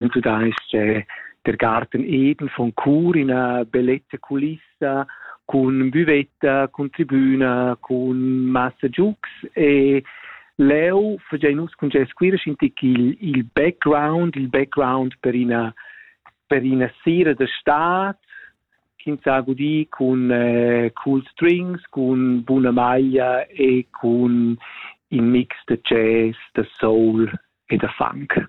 Also da ist äh, der Garten Edel von Chur in eine bellette Kulisse con buvetta, con tribüna, con massa giux e leu fagein nus cun gest quira schintic il, il background, il background per ina per ina sera da stad ch'ins ha gudì cun eh, cool strings, cun buna maglia e cun in mix da jazz, da soul e da funk.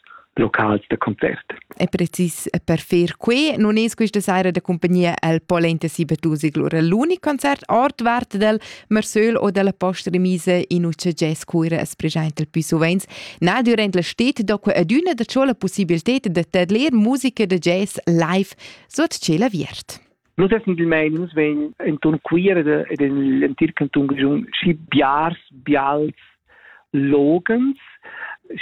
locals da concert. E precis per fer quei non es questa saira da compagnia al polenta Sibertusig lura l'unic concert ordvart del Marsöl o della postremise in ucce jazz cuira as presenta più sovens. Na durant la stet do que adüna da ciò la possibilità de tadler musica da jazz live sot ciel aviert. Nus definitivmein nus vein enton Cuira ed en l'entir canton grischun schi biars, bials loghens,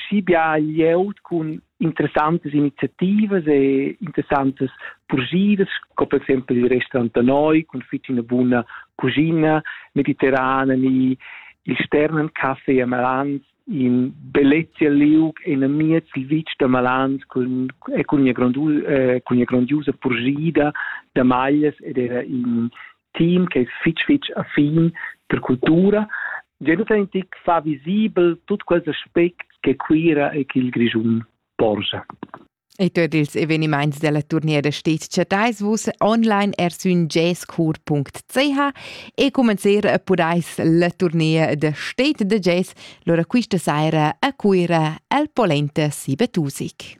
schi bia glieud cun interessantes iniziativas e interessantes purgidas, sco per exempel il restaurant da noi cun fitg ina buna cuschina mediterrana ni il Sternencaffé a Malans in bellezia liug enamiez il vitg da Malans cun e cun ina grondu eh, cun ina grandiosa purschida da maglias ed era in team che è fitg fitg affin per cultura Jonathan Tick fa visibel tut quels aspects che Cuira e che il Grischun porscha. E tuot ils evenimaints della turniera stet chattais vus online er sün jazzchor.ch e comenzer a pudais la turnier da stet da jazz lura quista saira a Cuira al Polenta Siebetusig.